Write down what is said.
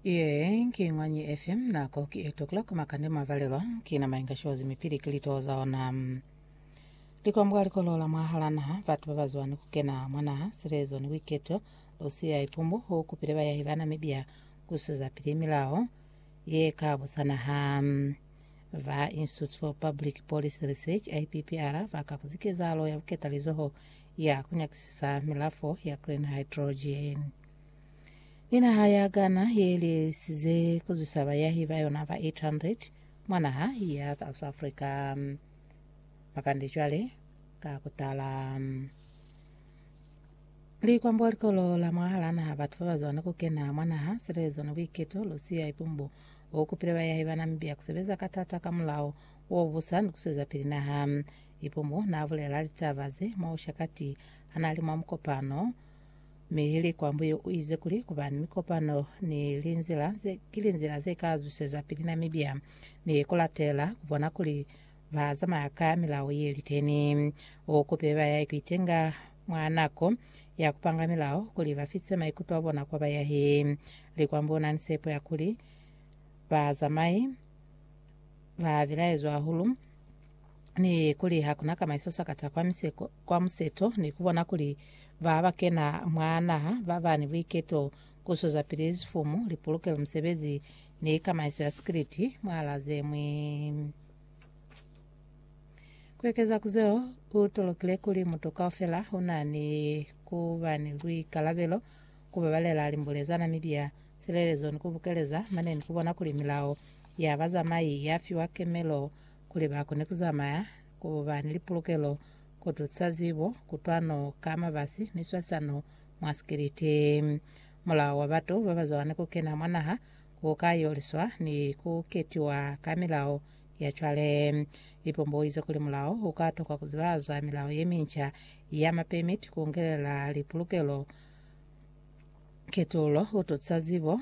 Ye ki ngwanyi FM nako ki 8 o'clock makande mavalelwa kina mainga shozi mipili ki lito za ona mm. likwambwa likolola mwahala naha batu babazwa ni kukena mwanaha silezo ni wiketo lusiya ipumbu ho kupile bayahi ba Namibia kusuza pili milao ye ka busanaha mm. va Institute for Public Policy Research IPPR va ka kuzikezalo ya buketalizoho ya ku nyakisisa milafo ya green hydrogen. Ni naha ya Ghana ye lisize ku zwisa bayahi ba yona ba 800 mwa naha ya South Africa makande cwale ka ku tala. Li kwambuwa likolo la mwahala naha batu ba ba zwane ku kena mwa naha, silezo ni buiketo, Lucia Ipumbu u kupile bayahi ba Namibia ku sebeza ka tata ka mulao wo busa ni ku sweza pili naha. Ipumo naabulela litaba ze mwausha kati hanaali mwa mukopano, mi Likwambuyu uize kuli kuba ni mikopano ni linzila ze ki linzila ze ka zwiseza pili na mibya ni kulatela kubona kuli bazamaya ka milao yeliteni. Ukupile bayahi kuitenga mwa nako ya kupanga milao kuli bafitise maikuto abona kwa bayahi. Likwambuyu unani sepo ya kuli bazamai babilaezwa hahulu ni kuli ha ku na kamaiso sakata kwa miseko kwa museto ni ku bona kuli ba ba kena mwa naha ba ba ni buiketo ku swezapili zifumu, lipolokelo, misebezi ni kamaiso ya sikiliti mwa la ze ñwi. Ku ekeza ku zeo, u tolokile kuli mutu kaufela u na ni ku ba ni buikalabelo ku babalela limbule za Namibia, silelezo ni ku bukeleza mane ni ku bona kuli milao ya bazamai ya fiwa kemelo kuli ba kone ku zamaya, ku ba ni lipulukelo, ku tusa zibo, kutwano ka mabasi ni swasano mwa sikiliti. Mulao wa batu ba bazwani ku kena mwa naha u ka yoliswa ni ku ketiwa ka milao ya cwale. Ipombo u ize kuli mulao u ka tokwa ku zibazwa milao ye minca ya mapemiti, ku ngelela lipulukelo, ketululo, ku tusa zibo,